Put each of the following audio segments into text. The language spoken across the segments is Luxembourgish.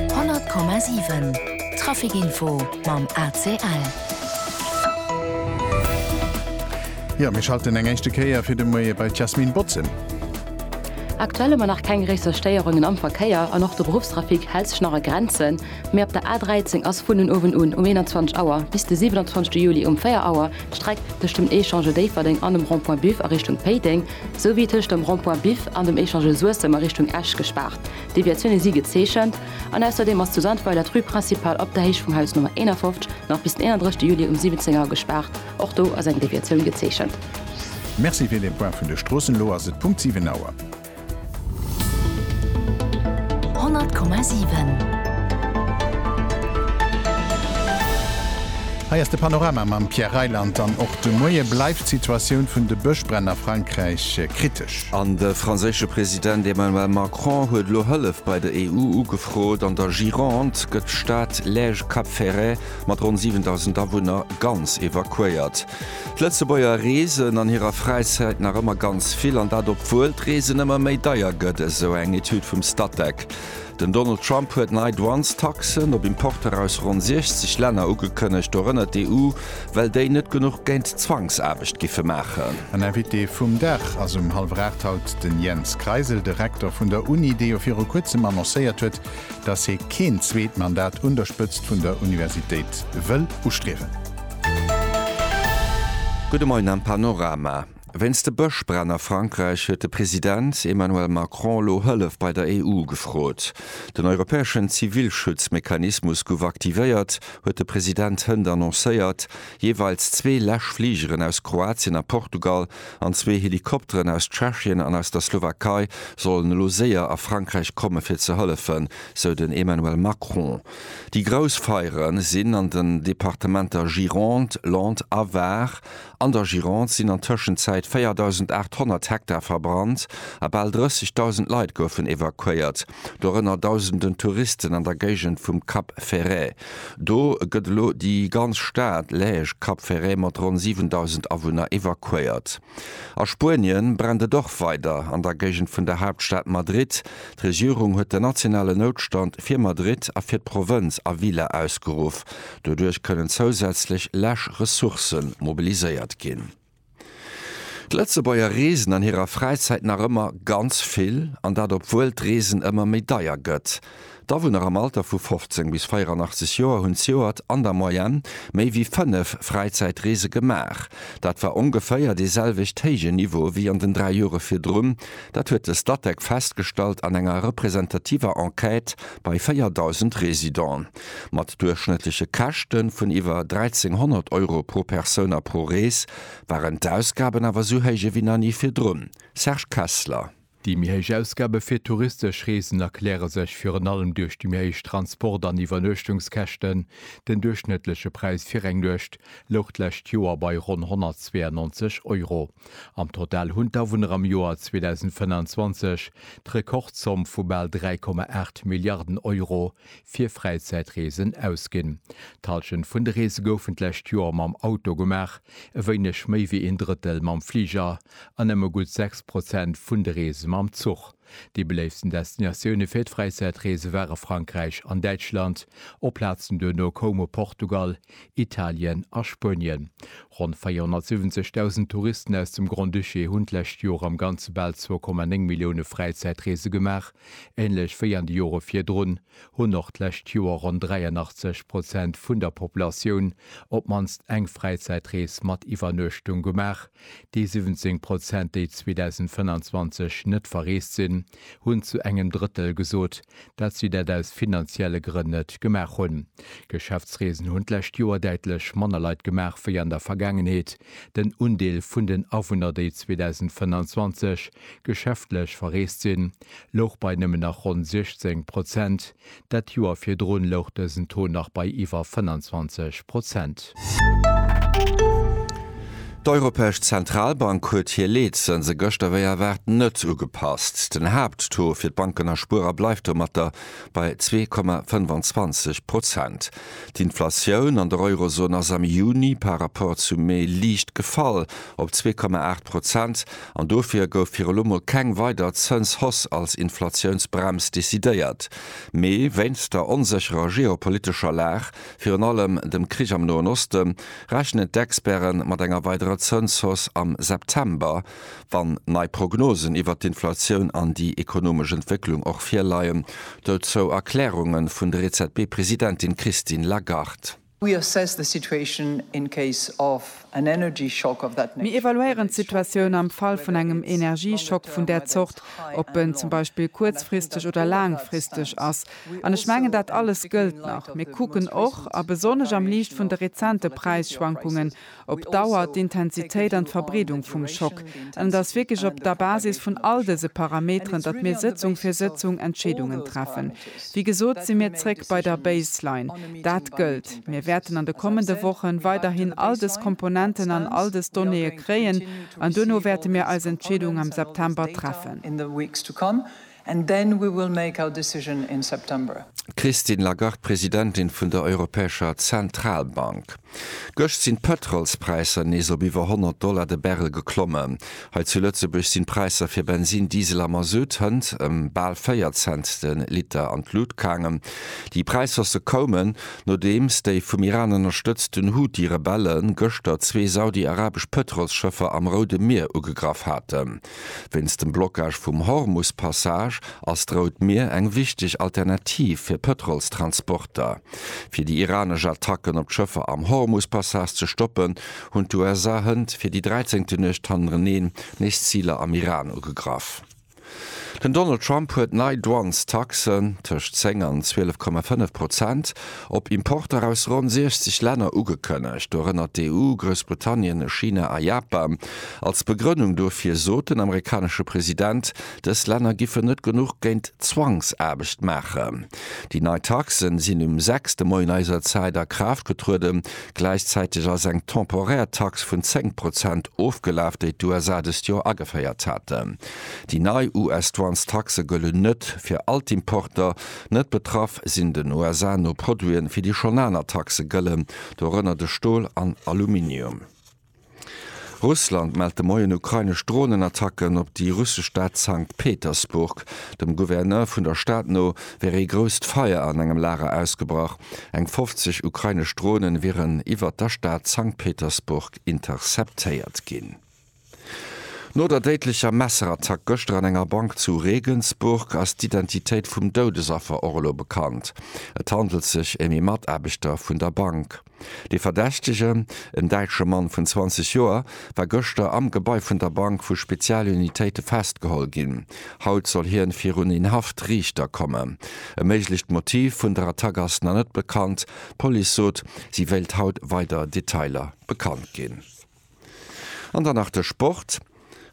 100,7 Trafic Info mam ACL. Jo, mir schalten eng éischte Kéier fir de Moie bei d'Yasmine Bozem. Aktuell hu mer nach keng gréisser Stéierungen am Verkéier an och de Beruffstrafic hält sech nach a Grenzen. Mee op der A13 ass vun den Owend un um 21 Auer bis de 27 Juli um 4 Auer d'Streck tëscht dem Echange Déifferdeng an dem Rond-Point Buff a Richtung Péiteng Sou wier tëscht dem Rond-point Biff an dem Echange Suessem a Richtung Esch gespaart. Deviatioune si gezeechent. An ausserdeem ass zu Sandweiler d'Rue Principale op der Héicht vum Haus Nummer 51 nach bis den 31 Juli um 17 Auer gespaart. Och do ass eng Deviatioun gezeechent. Merci fir den Point vun de Stroossen. Elo ass et Punkt 7 Auer. 100,7. Hei ass de Panorama mam Pierre Reyland an och de Moie bleift d'Situatioun vun de Bëschbränn a Frankräich kritesch. An de franséische President Emmanuel Macron huet elo Hëllef bei der EU ugefrot. An der Gironde gëtt d'Stad Lège-Cap-Ferret mat ronn 7.000 Awunner ganz evakuéiert. D'Lëtzebuerger reesen an hirer Fräizäit nach ëmmer ganz vill, an dat obwuel d'Reesen ëmmer méi deier gëtt, esou eng Etüd vum Statec. Den Donald Trump huet nei Douanestaxen op Importer aus ronn 60 Länner ugekënnegt, dorënner d'EU, well déi net genuch géint d'Zwangsaarbecht giffe maachen. An Invité vum Dag ass um hallwer 8 haut den Jens Kreisel, de Rektor vun der Uni, dee jo viru kuerzem annoncéiert huet, datt hie keen zweet Mandat un der Spëtzt vun der Universitéit wëll ustriewen. Gudde Moien am Panorama. Wéinst de Bëschbränn a Frankräich huet de President Emmanuel Macron elo Hëllef bei der EU gefrot. Den europäeschen Zivilschutzmechanismus gouf aktivéiert, huet de President hënt annoncéiert. Jeeweils zwee Läschfligeren aus Kroatien a Portugal an zwee Helikopteren aus Tschechien an aus der Slowakei sollen elo séier a Frankräich komme fir ze hëllefen, sou den Emmanuel Macron. Déi grouss Feiere sinn an den Departementer Gironde, Landes a Var. An der Gironde sinn an Tëschenzäit 4.800 Hektar verbrannt a bal 30.000 Leit goufen evakuéiert. dorënner dausenden Touristen an der Géigend vum Cap Ferret. Do gëtt elo déi ganz Stad Läech, Cap Ferret, mat ronn 7.000 Awunner evakuéiert. A Spuenie brennt et och weider an der Géigend vun der Haaptstad Madrid. D'Regierung huet den nationalen Noutstand fir Madrid a fir d'Provënz Avila ausgeruff. Doduerch kënnen zousätzlech lech Ressourcë mobiliséiert ginn. D'Lëtzebuerger reesen an hirer Fräizäit nach ëmmer ganz vill, an dat obwuel d'Reesen ëmmer méi deier gëtt. D'Awunner am Alter vu 15 bis 84 Joer hunn zejoert an der Moyenne méi wéi fënnef Fräizäitreese gemaach. Dat war ongeféier dee selwecht héije Niveau wéi an den dräi Jore virdrun. Dat huet de Statec festgestallt an enger representativer Enquête bei 4.000 Residenten. Mat duerchschnëttleche Käschte vun iwwer 1.300 Euro pro Persoun a pro Rees waren d'Ausgaben awer esou héich ewéi nach ni virdrun. Serge Kessler. Déi méi héich Ausgabe fir touristesch Reesen erkläre sech virun allem duerch déi méi héich Transport an Iwwernuechtungskäschten. Den duerchschnëttleche Präis fir eng Nuecht louch d'lescht Joer bei ronn 192 Euro. Am Total hunn d'Awunner am Joer 2025 d'Rekordzomm vu bal 3,8 Milliarden Euro fir Fräizäitreesen ausginn. D'Halschent vun de Reese goufen d'lescht Joer mam Auto gemaach, e wéineg méi wéi een Drëttel mam Fliger an nëmme gutt 6 Prozent vun de Reese mam Zuch. Déi beléiftsten Destinatioune fir d'Fräizäitreese ware Frankräich an Däitschland, op Plazen duerno koume Portugal, Italien a Spuenien. Ronn 470.000 Touristen aus dem Grand-Duché hunn d'lescht Joer am Ganze bal 2,9 Millioune Fräizäitreese gemaach, Ähnlech wéi an de Jore virdrun hunn och d'lescht Joer ronn 83 Prozent vun der Populatioun op d'mannst eng Fräizäitrees mat Iwwernuechtung gemaach. Déi 17 Prozent, déi 2025 net verreest sinn, hunn zu engem Drëttel gesot, dat si dat aus finanzielle Grënn net gemaach hunn. Geschäftsreesen hunn d'lescht Joer däitlech manner Leit gemaach wéi an der Vergaangenheet. Den Undeel vun den Awunner, déi 2025 Geschäftlech verreest sinn, louch bei nëmmen nach ronn 16 Prozent. Dat Joer virdrun louch dësen Taux nach bei iwwer 25 Prozent. D'Europäesch Zentralbank huet hir Leetzënse gëschter wéi erwaart net ugepasst. Den Haapttaux fir d'Banken a Spuerer bleift domatter bei zwee Komma 25 Prozent. D'Inflatioun an der Eurozon ass am Juni par Rapport zum Mee liicht gefall op zwee Komma aacht Prozent An dofir gouf fir elo mol keng weider Zënshausse als Inflatiounsbrems decidéiert. Mee wéinst der onsécherer geopolitescher Lag, virun allem dem Krich am Noen Osten, rechnen d'Experte mat enger weiderer Zënshausse am September, wann nei Prognosen iwwert d'Inflatioun an déi ekonomesch Entwécklung och virleien. Dozou Erklärunge vun der EZB-Presidentin Christine Lagarde. Mir evaluéieren d'Situatioun am Fall vun engem Energieschock vun där Zort, ob en zum Beispill kuerzfristeg oder laangfristeg ass. An ech mengen, dat alles gëllt nach. Mir kucken och, a besonnesch am Liicht vun de rezente Präisschwankungen, op d'Dauer, d'Intensitéit an d'Verbreedung vum Schock. An et ass wierklech op der Basis vun all dëse Parameteren, datt mir Sëtzung fir Sëtzung Entscheedungen treffen. Wéi gesot si mir zréck bei der Baseline. Dat gëllt. Mir wäerten an de kommende Wochen weiderhin all dës Komponenten an all dës Donnéeë kréien an duerno wäerte mir eis Entscheedung am September treffen. And then we will make our decision in September. D'Christine Lagarde, Presidentin vun der Europäescher Zentralbank. Gëscht sinn d'Pëtrolspräisser nees op iwwer 100 Dollar de Barrel geklommen. Hei zu Lëtzebuerg sinn d'Präisser fir Bensin, Diesel a Mazout hënt ëm bal 4 Cent de Liter an d'Lut gaangen. Déi Präishausse koumen, nodeems déi vum Iran ënnerstëtzten Houthi-Rebelle gëschter zwee saudi-arabesch Pëtrolsschëffer am Roude Mier ugegraff haten. Wéinst dem Blockage vum Hormus-Passage ass d'Rout Mier eng wichteg Alternativ fir Pëtrolstransporter. Fir déi iranesch Attacken op d'Schëffer am Hormus-Passage ze stoppen, hunn d'USA hënt fir déi dräizéngte Nuecht hannereneen nees Ziler am Iran ugegraff. Den Donald Trump huet nei Douanestaxen, tëscht 10 an 12,5 Prozent, Op Importer aus ronn 60 Länner ugekënnegt, dorënner d'EU, Groussbritannien, China a Japan. Als Begrënnung dofir sot den amerikanesche President, dës Länner giffen net genuch géint Zwangsaarbecht maachen. Déi nei Taxe sinn um sechs de Moien eiser Zäit a Kraaft getrueden. Gläichzäiteg ass eng temporär Tax vun 10 Prozent ofgelaf, déi d'USA dëst Joer ageféiert haten. Déi nei US-Douanestaxe gëllen net fir all d'Importer, Net betraff sinn den USA no Produiten, fir déi schonn aner Taxe gëllen, dorënner de Stol an Aluminium. Russland mellt de Moien ukrainesch Dronenattacken op déi russesch Stad Sankt Petersburg. Dem Gouverneur vun der Stad no wär ee grousst Feier an engem Lager ausgebrach. Eng 50 ukrainesch Dronen wieren iwwert der Stad Sankt Petersburg interceptéiert ginn. No der déidlecher Messerattack gëschter an enger Bank zu Regensburg ass d'Identitéit vum Doudesaffer och elo bekannt. Et handelt sech ëm ee Mataarbechter vun der Bank. De Verdächtegen, en däitsche Mann vun 20 Joer, war gëschter am Gebai vun der Bank vu Spezialunitéite festgeholl ginn. Haut soll hien virun een Haftriichter kommen. E méiglecht Motiv vun der Attack ass nach net bekannt. D'Police sot, si wéilt haut weider Detailer bekannt ginn. An dann nach de Sport.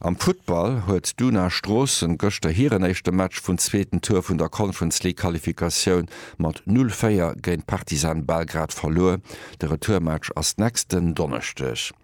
Am Futtball huet d'Una Stroossen gëschter hiren éischte Match vun zweeten Tour vun der Conference League Qualifikatioun mat 0, 4 géint Partizan Belgrad verluer. De Retourmatch ass nächsten Donneschdeg.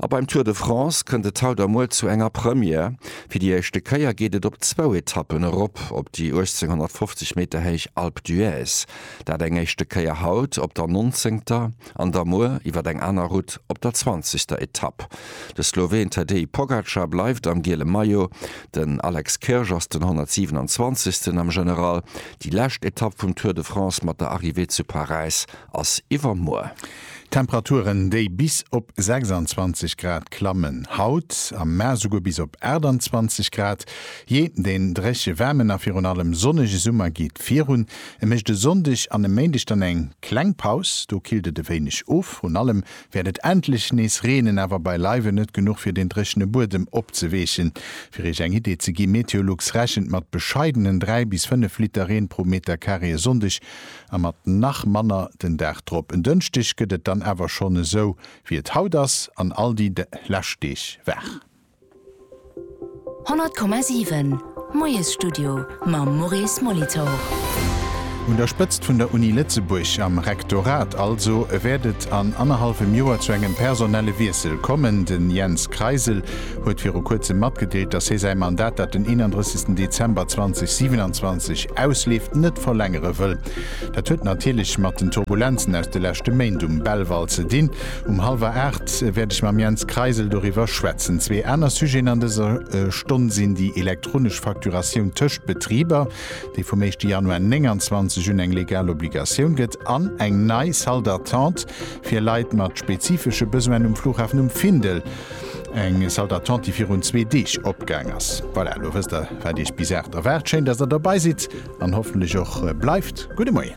A beim Tour de France kënnt et haut a muer zu enger Première. Fir déi éischte Kéier geet et op zwou Etappen erop op déi 1850 Meter héich Alpe d'Huez. Dat eng éischte Kéier haut op der 19. an da muer iwwer eng aner Route op der zwanzegster Etapp. De Sloween Tadej Pogacar bleift am giele Maillot, den Alex Kirsch ass den 127. am General. Déi lescht Etapp vum Tour de France mat der Arrivée zu Paräis ass iwwermuer. Temperaturen, déi bis op 26 Grad klammen, haut am Maart esouguer bis op 28 Grad. Jee, den dréche waarmen a virun allem sonnege Summer geet virun. E mécht e Sonndeg an e Méindeg dann eng kleng Paus, do killt et e wéineg of. Vrun allem wäert et endlech nees reenen, awer beileiwen net genuch fir deen dréchene Buedem opzeweechen. Fir Iech eng Idee ze ginn, Meteolux rechent mat bescheidenen 3 bis 5 Liter Reen pro Metercarré e Sonndeg a mat nach manner den Dag drop. En Dënschdeg gëtt et dann awer schonn esou wéi et haut ass an all déi lescht Deeg waach. 100,7 Moiesstudio mam Maurice Molitor. Un der Spëtzt vun der Uni Lëtzebuerg, am Rektorat also, wäert et an annerhallwem Joer zu engem personelle Wiessel kommen. Den Jens Kreisel huet viru kuerzem matgedeelt, datt hie säi Mandat, dat den 31 Dezember 2027 ausleeft, net verlängere wëll. Dat huet natierlech mat den Turbulenzen aus de leschte Méint um Belval ze dinn. Um halwer 8 wäert ech mam Jens Kreisel doriwwer schwätzen. Zwee aner Sujeten an dëser Stonn sinn déi elektronesch Facturatioun tëscht Betriber, déi vum éischte Januar 29 un eng legal Obligatioun gëtt, an eng nei Salle d'attente fir Leit mat spezifesche Besoinen um Flughafen um Findel. Eng Salle d'attente, déi virun zwee Deeg opgaang ass. Voilà, elo wësst der, wat Iech bis 8 erwaart. Schéin, dass der dobäi sidd an hoffentlech och bleift. Gudde Moien.